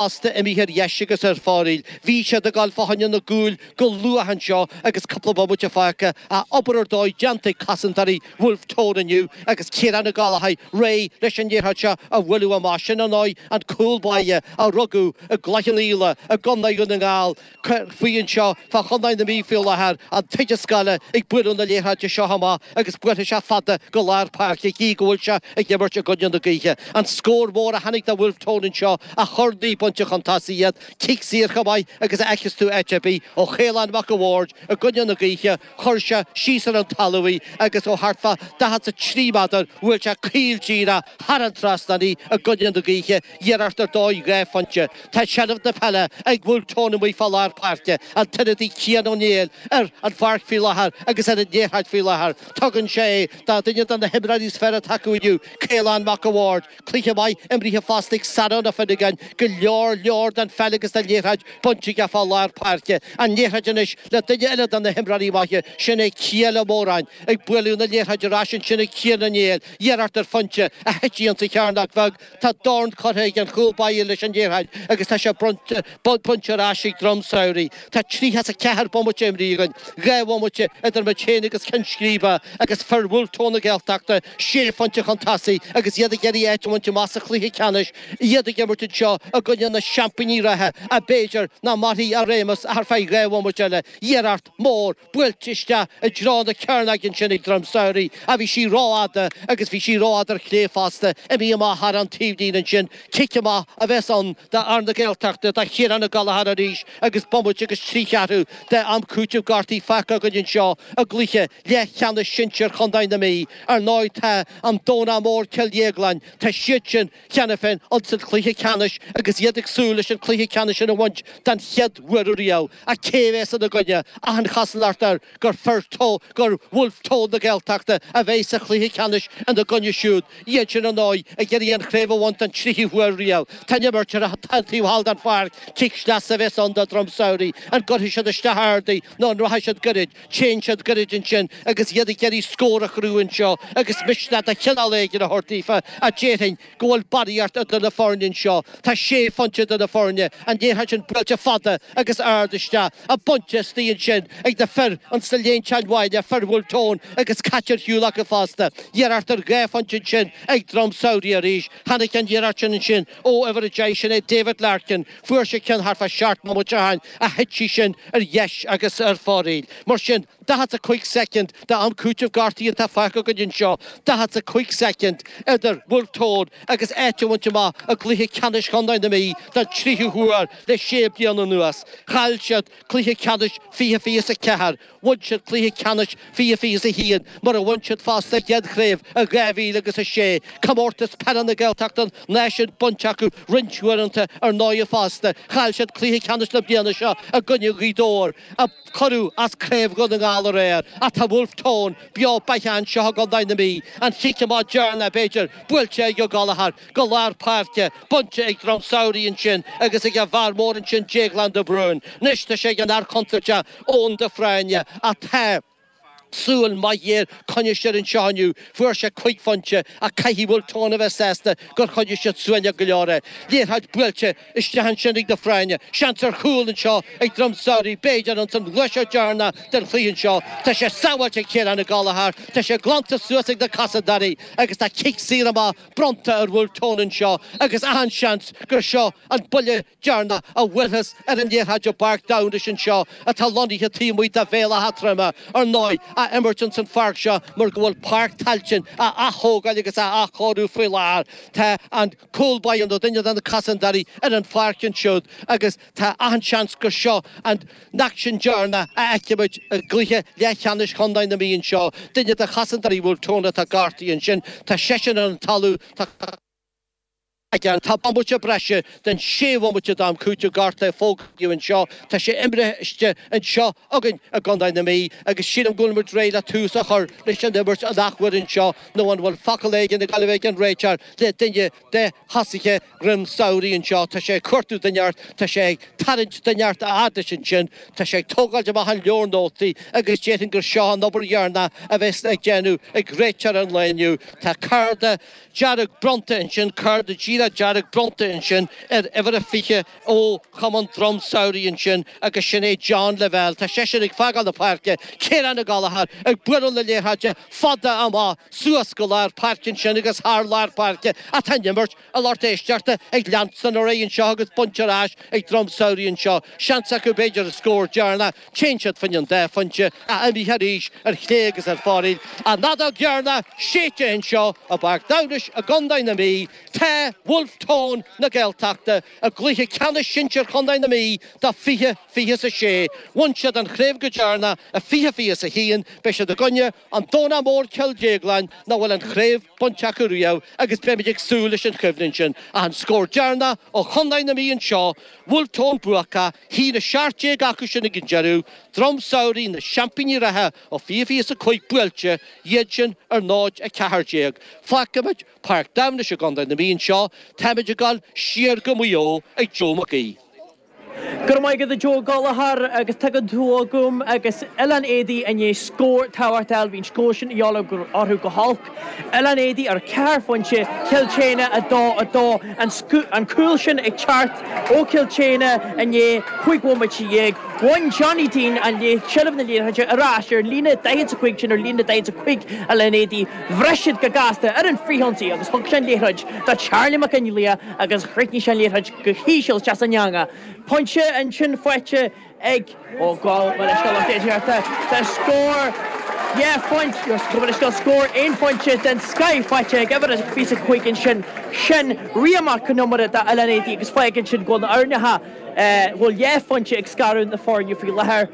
fosta imithe ar dheis agus ar fóraoil. Bhí siad ag gabháil fá choinne na gcúl go luath anseo agus cúpla bomaite fágtha, ach obair ar dóigh déanta ag cosantóirí Wolfe Tone inniu agus Ciarán Ó Gallachóir réidh leis an liathróid seo a bhualadh amach. Sin ar ndóigh an cúl báire a rugadh i gCloich Cheannfhaola i gContae Dhún na nGall, cur faoi anseo fá Chontae na Mí faoi láthair, an t-oide scoile ag bualadh na liathróide seo amach agus buailfidh sé fada go lár páirce gí go bhfuil sé ag imirt i gcoinne na gaoithe. An scór mór a tháinig do Wolfe Tone anseo a chuir naoi bpointe chun tosaigh iad, cic saor chomh maith agus a fheicfeas tú áit ar bith, ó Chaolán Mac a' Bhaird i gcoinne na gaoithe, Chuir sé síos ar an talamh í agus ó thart fá daichead 's a trí méadar bhuail sé caol díreach thar an trasnán í i gcoinne na gaoithe, iarracht ar dóigh dhá phointe. Tá seilbh na peile ag Wolfe Tone amuigh fá lár páirce, an t-ionadaí Cian Ó Néill ar an pháirc faoi láthair agus ar an liathróid faoi láthair. Tugann sé é do dhuine de na himreoirí is fearr atá acu inniu, Caolán Mac a' Bhaird, Cluiche maith imrithe fosta ag Saran Ó Fionnagáin, go leor leor den pheil agus den liathróid bainte aige fá lár páirce. An liathróid anois le duine eile de na himreoirí maithe, sin é Cian Ó Móráin. Ag bualadh na liathróide ar ais ansin ag Cian Ó Néill, iarracht ar phointe, ach thit sí insa chearnóg bheag. Tá dorn curtha ag an chúl báire leis an liathróid agus tá sé bainte ar ais ag Droim Samhraidh. Tá tríocha is a ceathair bomaite imrithe againn, dhá bhomaite idir muid féin agus ceann scríbe, agus fir Wolfe Tone na Gaeltachta sé phointe chun tosaigh agus iad ag iarraidh áit a bhaint amach sa chluiche ceannais, iad ag imirt anseo i gcoinne na seaimpíní reatha, ach b'fhéidir nach mairfidh a réimeas ach ar feadh dhá bhomaite eile. Iarracht mhór. buailte isteach i dtreo na cearnóige ansin ag Droim Samhraidh, ach bhí sí rófhada agus bhí sí rófhada ar chlé fosta, imithe amach thar an taobhlíne ansin, cic amach a bheas ann d'fhear na Gaeltachta, do Chiarán Ó Gallachóir arís agus bomaite agus trí cheathrú d'am cúitimh gortaithe fágtha againn anseo i gcluiche leathcheannais sinsear chontae na Mí. Ar ndóigh tá an Domhnach Mór, Cill Dhéagláin, tá siad sin. cheana féin insan chluiche ceannais agus iad ag súil leis an chluiche ceannais sin a bhaint don chéad uair riamh ach cé a bhéas ina gcoinne achan chosúlacht air gur fir Tone, gur Wolfe Tone na Gaeltachta a bhéas sa chluiche ceannais ina gcoinne siúd, iad sin ar ndóigh ag iarraidh an chraobh a bhaint don tríú huair riamh. Tá an imirt ar an taobh thall den pháirc, cic sleasa a bhéas ann do Dhroim Samhraidh, an gcuirfidh siad isteach ard í nó an rachaidh siad goirid? Téann siad gairid ansin agus iad ag iarraidh scór a chruthú anseo agus misneach de chineál éigin a thabhairt daofa, ach déarfainn go bhfuil barraíocht idir na foirne anseo. Tá sé phointe idir na foirne, an liathróid sin buailte fada agus ard isteach ach bainte istigh ansin ag na fir insa líne chun an bhaile, fir Wolfe Tone agus caite ar shiúl acu fosta. Iarracht ar dhá phointe ansin ag Droim Samhraidh arís. Tháinig an iarracht sin ansin ó uimhir 10, sin é David Larkin, Fuair sé ceann thart fá seacht mbomaite ó shin, ach thit sí sin ar dheis agus ar fóraoil. Mar sin, daichead 's a cúig soicind d'am cúitimh gortaithe atá fágtha againn anseo, daichead 's a cúig soicind idir Wolfe Tone agus áit a bhaint amach i gcluiche ceannais chontae na Mí don tríú huair le sé bliana anuas. Chaill siad cluiche ceannais fiche fiche 's a ceathair, Bhain siad cluiche ceannais fiche fiche 's a haon, mar a bhain siad fosta a gcéad chraobh i 2000 agus a sé. Comórtas Peile na Gaeltachta an náisiúin bainte acu roinnt uaireanta ar ndóighe fosta. Chaill siad cluiche ceannais na bliana seo i gcoinne Ghaoth Dobhair, a cuireadh as Craobh Dhún na nGall aréir. Ach tá Wolfe Tone beo beathach anseo i gContae na Mí, an chic amach deireanach, b'fhéidir, buailte ag Ó Gallachóir. Go lár páirce, bainte ag Droim Samhraidh ansin agus ag a bhfear mór ansin Déaglán de Brún. Anois tá sé ag an fhear contúirteach Eoghan de Fréine ach tá súil mhaith ghéar coinnithe air anseo inniu. Fuair sé cúig phointe ach caithfidh Wolfe Tone a bheith sásta gur choinnigh siad suaimhneach go leor é. Liathróid buailte isteach ansin ag de Fréine. Seans ar chúl anseo ag Droim Samhraidh b'fhéidir ins an ghluaiseacht dheireanach den chluiche seo. Tá sé sábháilte ag Ciarán Ó Gallachóir, tá sé glanta suas ag na cosantóirí agus tá cic saor amach bronnta ar Wolfe Tone anseo agus achan seans gur seo an buille deireanach a bhuailfeas ar an liathróid i bPáirc Damhnais anseo atá lonnaithe taobh amuigh de Bhéal Átha Troime, ar ndóigh, á imirt ins an pháirc seo mar go bhfuil Páirc Tailteann á aththógáil agus á athchóiriú faoi láthair. Tá an cúl báire nó duine de na cosantóirí ar an pháirc ansiúd agus. Tá achan seans gur seo an aicsean deireanach a fheicfimid i gcluiche leathcheannais chontae na Mí anseo, duine de chosantóirí Wolfe Tone atá gortaithe ansin, tá seisean ar an talamh, tá cúl aige ann, tá bomaite breise den sé bhomaite d'am cúitimh gortaithe a fógraíodh anseo, tá sé imrithe anseo againn i gcontae na Mí agus sílim go bhfuilimid réidh le tús a chur leis an imirt an athuair anseo nó an bhfuil focal éigin ag gabháil a bheith ag an réiteoir le duine de thosaithe Dhroim Samhraidh annseo, tá sé ag cuartú duine thart, tá sé ag tarraingt duine thart a fhad leis annsin, tá sé ag tógáilt amach an leabhar nótaí agus déarfainn gur seo an obair dheireanach a bhéas ag déanamh ag réiteoir an lae inniu. Tá cárta dearg bronnta annsin, cárta díreach dearg bronnta annsin ar uimhir a 20 ó Chumann Droim Samhraidh ansin agus sin é John Lavelle, tá seisean ag fágáil na páirce, Ciarán Ó Gallachóir ag bualadh na liathróide fada amach suas go lár páirce ansin agus thar lár páirce atá an imirt, a lucht éisteachta ag leanstan ar aghaidh anseo agus bainte ar ais ag Droim Samhraidh anseo, seans acu b'fhéidir an scór deireanach, téann siad fá choinne an dá phointe ach imithe arís ar chlé agus ar fóraoil an fheadóg dheireanach séidte anseo i bPáirc Damhnais i gContae na Mí. Tá Bhulf Tón na Gaeltachta i gcluiche ceannais sinsir chontae na Mí do 20 20 is 6. Bhain siad an chraobh go deireanach i 20 20 is 1. Beidh siad i gcoinne an Domhnach Mór Cill Dhéagláin nach bhfuil an chraobh bainte acu riamh agus beimid ag súil leis an choimhlint sin. Ach an scór deireanach ó chontae na Mí anseo, Bhulf Tón buacach, 1 17 acu sin ag an deireadh, Drom Samhraidh na seaimpíní reatha ó 20 20 is 5 buailte, iad sin ar 0 14. Fágfaimid. Páirc Damhnais i gContae na Mí anseo, taimid ag dul siar go Maigh Eo ag Joe Mac Aoidh. Go raibh maith agat a Joe Gallagher agus tagann tú chugam agus Oileán Éadaí i ndiaidh scór tábhachtach a fháil. Bhí'n scór sin a dhíth orthu go holc. Oileán Éadaí ar ceithre phointe, Cill tSéadhna 2, 2. An cúl sin ag teacht ó Cill tSéadhna i ndiaidh cúig bhomaite dhéag. Bhain Johnny Deane an léacht, seilbh na liathróide, ar ais ar líne a 45 sin ar líne a 45 Oileán Éadaí. Bhris siad go gasta ar an fhrithionsaí agus thug sé an liathróid do Charlie Mac Fhionnlaoich agus chríochnaigh sé an liathróid go híseal isteach san eangach. Pointe ansin faighte ag Ó Gallchóir leis na Laighnigh ag iarracht de scór dhá phointe agus chun a scil scór aon phointe den scoth faighte ag uimhir a 25 ansin. Sin Rian Mac an Iomaire d'Oileán Éadaí agus fágann sin go, nach bhfuil dhá phointe ag scaradh na foirne faoi láthair.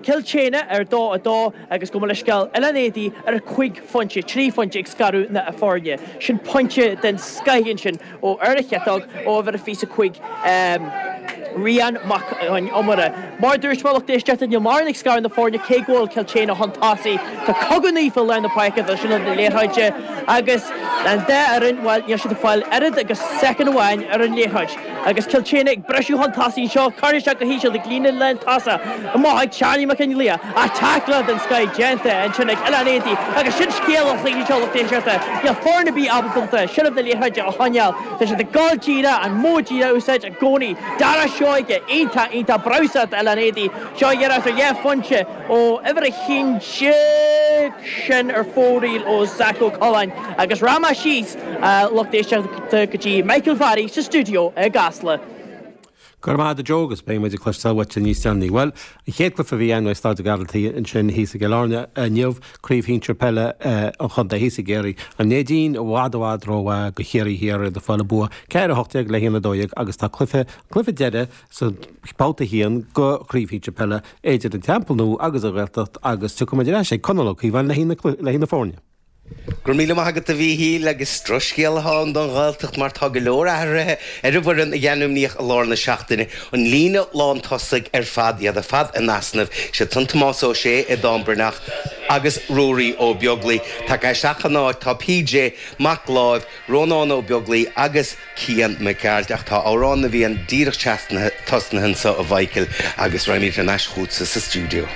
Cill tSéadhna ar 2 2 agus gabh mo leithscéal Oileán Éadaí ar 5 phointe, 3 phointe ag scaradh na foirne sin pointe den scoth ansin ó ar a chiotóg ó uimhir a 25 Rian Mac an Iomaire. Mar a dúirt mé lucht éisteachta níl mórán ag scaradh na foirne cé go bhfuil Cill tSéadhna chun tosaigh. Tá cogadh naofa i lár na páirce do sheilbh na liathróide agus an dá fhoireann bhuel níl siad ag fáil oiread agus soicind amháin ar an liathróid. Agus Cill tSéadhna ag briseadh chun tosaigh anseo, curtha isteach go híseal ag líne lántosaigh i mbá ag Charlie Mac Fhionnlaoich, ach tackle den scoth déanta ansin ag Oileán Éadaí agus sin scéal an chluiche seo a lucht éisteachta. Níl foireann ar bith ábalta seilbh na liathróide a choinneáil. Tá siad ag gabháil díreach, an modh díreach a úsáid i gcónaí. Dara Seoighe iontach, iontach breosla do Oileán Éadaí. Seo iarracht ar dhá phointe ó uimhir a haon déag sin ar fóraoil ó Zac Ó Coileáin agus rachaimid síos. lucht éisteachta go dtí Michael Farry sa stiúideo i gCasla. Go raibh maith agat a Joe agus beidh muid ag cloisteáil uait níos déanaí. Bhuel, an chéad chluiche a bhí ann i Staid an Ghearaltaigh ansin thíos i gCill Airne inniu, Craobh Shinsir Peile an Chontae thíos i gCiarraí, an Neidín i bhfad i bhfad rómhaith go Chiarraí Thiar, iad ag fáil an bua ceathair a hocht déag le haon a dó dhéag agus tá cluiche, an cluiche deireadh sa babhta a haon go Craobh Shinsir Peile idir an Teampall Nua agus an Ghaeltacht agus tiocfaidh muid ar ais ag Conall Ó Cíobháin le haghaidh na foirne. Go raibh míle maith agat, a Mhíchíl, agus drochscéal atá ann don Ghaeltacht mar tá go leor athruithe ar an bhfoireann a ainmníodh i lár na seachtaine, an líne lán tosaigh ar fad, iad ar fad in easnamh, siad san Tomás Ó Sé, Aodán Breathnach agus Ruairí Ó Beaglaoi. Tagtha isteach ina n-áit tá PJ Mac Láimh, Rónán Ó Beaglaoi agus Cian Mac Gearailt ach tá Amhrán na bhFiann díreach tosnaithe anseo, a Mhíchíl, agus raghaimid thar n-ais chughatsa sa stiúideo.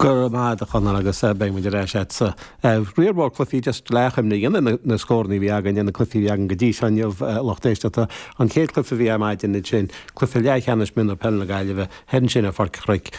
Go raibh maith agat, a Chonaill, agus beidh muid ar ais agatsa. Riar mór cluichí, just le achoimre a dhéanamh ar na scóranna a bhí againn, ins na cluichí a bhí againn go dtí seo inniu, lucht éisteachta. An chéad cluiche a bhí ar maidin ansin, cluiche leathcheannais mionúr peil na Gaillimhe, thoir ansin ar Pháirc an Chnoic.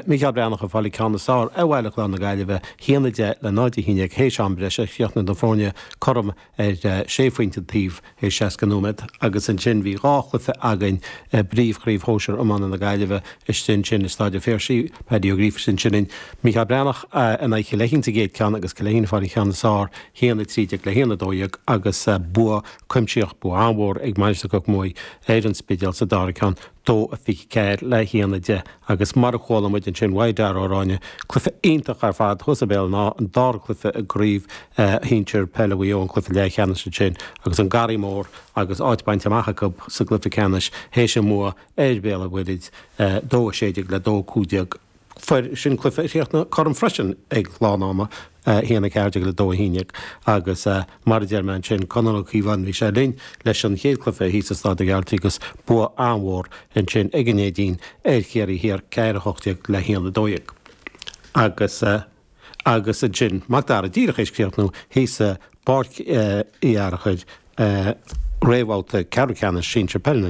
Mícheál Breathnach ag fáil an ceann is fearr ar Bhaile Chláir na Gaillimhe, 1-10 le 0-11 th'éis am breise, chríochnaigh na foirne cothrom ar sé phointe an taobh i 60 nóiméad agus ansin bhí dhá chluiche againn i bPríomhchraobh Shóisir Iomána na Gaillimhe istigh ansin i Stáid an Phiarsaigh, Paddy Ó Gríofa istigh ansin linn, Micheál Breathnach in aghaidh Chill Fheichín sa gcéad ceann agus Cill Fheichín ag fáil an cheann is fearr 1, 13 le 1, 12 agus bua cuimsitheach, bua an-mhór ag Mainistir Chnoc Muaidhe ar an Spidéal sa dara ceann. dó a fiche ceathair le haon a deich agus mar a chuala muid ansin uaidh Dara Ó Ráinne, cluife iontach ar fad thuas i mBéal an Átha, an dara cluife i gcraobh shinsir peile Mhaigh Eo an cluife leathcheannais ansin agus an Garraí Mór agus áit bainte amach acu sa gcluife ceannais théis a mbua ar Bhéal an Mhuirthid, 2 16 le 2 15. Mar sin cluiche a chríochnaigh cothrom freisin ag lán ama 1 14 le 2 11 agus, mar a deir mé ansin, Conall Ó Cíobháin bhí sé linn leis an chéad cluiche thíos i Stáid an Ghearaltaigh agus bua an-mhór ansin ag an Neidín ar Chiarraí Thiar 4 18 le 1 12 agus agus ansin Macdara díreach théis críochnú thíos i bPáirc Uí Fhearchair réamhbhabhta ceathrú ceannais sinsir peile na.